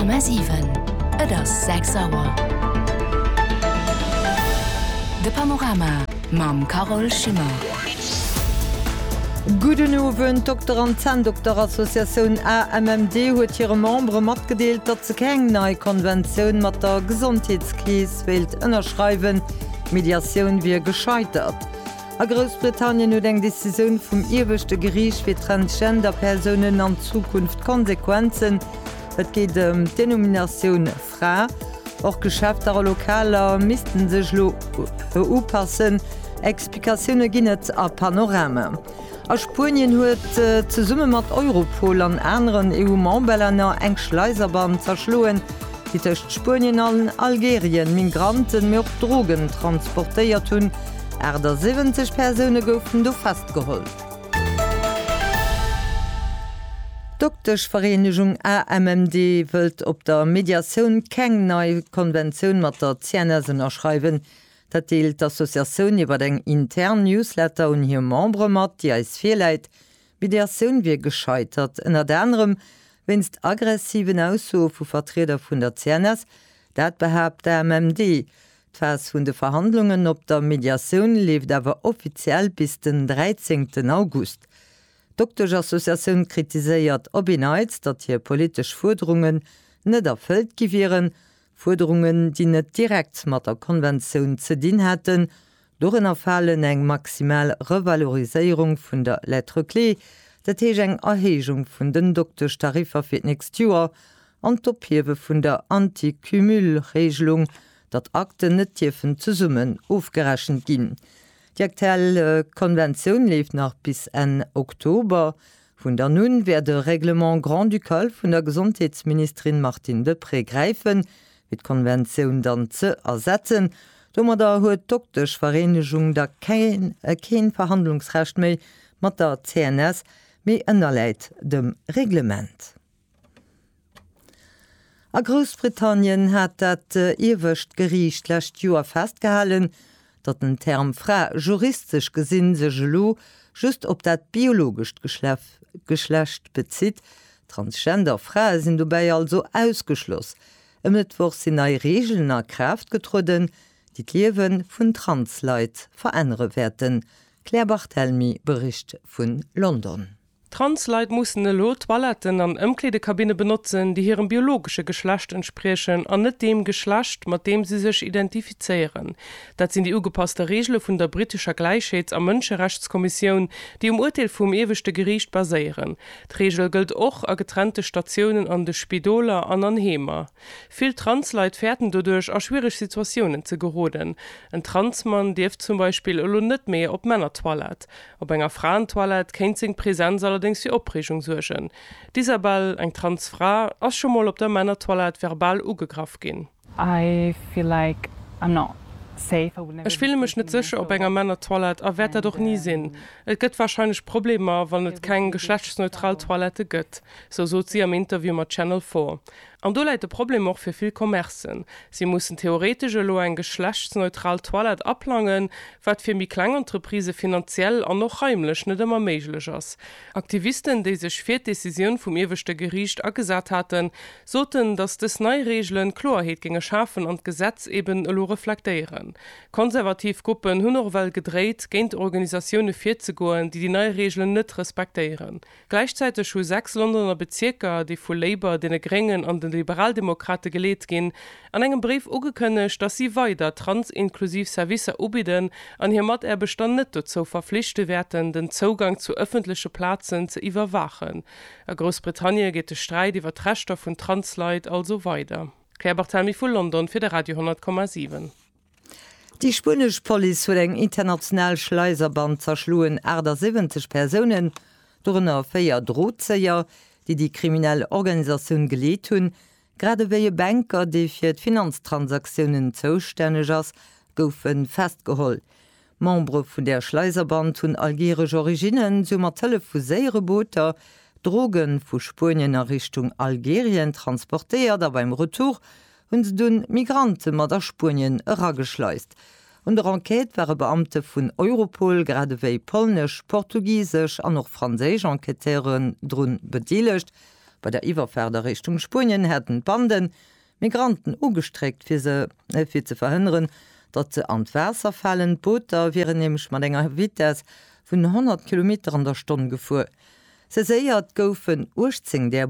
Komma siwen. Et ass sechs Auer. De Panorama mam Carol Schimmer. Gudden Owend. D'Dokter an Zänndokterassociatioun AMMD huet hire Membere matgedeelt, datt se keng nei Konventioun mat der Gesondheetskeess wéilt ënnerschreiwen. D'Mediatioun wier gescheitert. A Groussbritannien huet eng Decisioun vum ieweschte Geriicht fir Transgender-Persounen an Zukunft Konsequenzen. Et geet ëm d'Denominatioun Fra. Och Geschäfter a Lokaler misste sech elo upassen. Explikatioune ginn et a Panorama. A Spuenien huet, zesumme mat Europol an aneren EU-Memberlänner, eng Schleiserband zerschloen, déi tëscht Spuenien an Algerien Migranten, mee och Drogen transportéiert hunn. 78 Persoune goufen do festgeholl. D'Dokteschvereenegung AMMD wëllt op der Mediatioun keng nei Konventioun mat der CNS ënnerschreiwen. Dat deelt d'Associatioun iwwer eng intern Newsletter un hir Membere mat, déi eis virläit. D'Mediatioun wier gescheitert, ënnert anerem wéinst aggressiven Aussoe vu Vertrieder vun der CNS. Dat behaapt d'AMMD. D'Phas vun de Verhandlungen op der Mediatioun leeft awer offiziell bis den 13 August. D'Dokteschassociatioun kritiséiert op en Neits, datt hir politesch Fuerderungen net erfëllt gi wieren, Fuerderungen, déi net direkt mat der Konventioun ze dinn hätten, dorënner falen eng maximal Revaloriséierung vun der Lettre clé, dat heesch eng Erhéijung vun den Dokteschtariffer fir d'nächst Joer, an d'Ophiewe vun der Anti-Cumul-Regelung, datt Akten net dierfen zesummen ofgerechent ginn. Déi aktuell Konventioun leeft nach bis Enn Oktober. Vun dann un wäert e Règlement grand-ducal vun der Gesondheetsministerin Martine Deprez gräifen, fir d'Konventioun dann ze ersetzen. Domadder huet d'Dokteschvereenegung da keen Verhandlungsrecht méi mat der CNS, mee ënnerläit dem Reglement. A Groussbritannien hat dat iewescht Geriicht d'lescht Joer festgehalen, datt den Term Fra juristesch gesi sech elo just op dat biologescht Geschlecht bezitt. Transgender Frae sinn dobäi also ausgeschloss. E Mëttwoch sinn nei Reegelen a Kraaft getrueden, déi d'Liewe vun Trans-Leit verännere wäerten. D'Claire Barthelmy bericht vun London. Transleit mussen elo Toiletten an Ëmkleedekabinne benotzen, déi hirem biologesche Geschlecht entspriechen an net deem Geschlecht, mat deem si sech identifizéieren. Dat sinn déi ugepasste Reegele vun der britescher Gläichheets a Mënscherechtskommissioun, déi um Urteel vum Ieweschte Geriicht baséieren. D'Reegel gëllt och a getrennte Statiounen an de Spidoler an an Heemer. Vill Transleit fäerten doduerch, a schwiereg Situatiounen ze geroden. En Transmann dierf zum Beispill elo net méi op d'Männertoilette. Op enger Fraentoilette kéint seng Presenz allerdéngs fir Opreegung suergen. D'Isabelle, eng trans Fra, ass scho mol op der Männertoilette verbal ugegraff ginn. Ech fille mech net sécher op enger Männertoilette a wäert dat och ni sinn. Et gëtt warscheinlech Problemer, wann et keng geschlechtsneutral Toilette gëtt, sou sot si am Interview mat Channel Four. An do läit de Problem och fir vill Commercen. Si mussen theoretesch elo eng geschlechtsneutral Toilette aplangen, wat fir méi kleng Entreprisë finanziell an och raimlech net ëmmer méiglech ass. Aktivisten, déi sech fir d'Decisioun vum ieweschte Geriicht agesat haten, soten, datt dës nei Reegelen Kloerheet géinge schafen an d'Gesetz eben elo reflektéieren. Konservativ Gruppen hunn och ewell gedréit, géint Organisatioune virzegoen, déi déi nei Reegelen net respektéieren. Gläichzäiteg hu sechs Londoner Bezierker, déi vu Labour, deene Gréngen an de Liberaldemokrate geleet ginn, an engem Bréif ugekënnegt, datt si weider transinklusiv Servicer ubidden an hir Mataarbechter net dozou verflichte wäerten, den Zougang zu ëffentleche Plazen ze iwwerwaachen. A Groussbritannie geet de Sträit iwwer d'Rechter vun Trans-Leit also weider. D'Claire Barthelmy vu London fir de Radio 10,7. Déi spuenesch Police huet eng international Schleiserband zerschloen, 78 Persounen, dorënner véier Drozéier, déi déi kriminell Organisatioun geleet hunn. Grad ewéi e Banker, dee fir d'Finanztransaktiounen zoustänneg ass, goufe festgeholl. D'Membere vun där Schleiserband hunn algeeresch Originnen, si hu mat Hëllef vu séiere Booter Droge vu Spuenien a Richtung Algerien transportéiert a beim Retour hu se dunn d'Migrante mat a Spuenien erageschleist. Un der Enquête ware Beamte vun Europol, grad ewéi polnesch, portugisesch an och franséisch Enquêteuren drun bedeelegt. Bei der Iwwerfaart a Richtung Spuenien haten d'Banden Migranten ugestréckt, fir se fir ze verhënneren, datt se an d'Waasser falen. D'Booter wieren nämlech mat enger Vitess vun 100 Kilometer an der Stonn gefuer. Saiséiert goufen 18 där.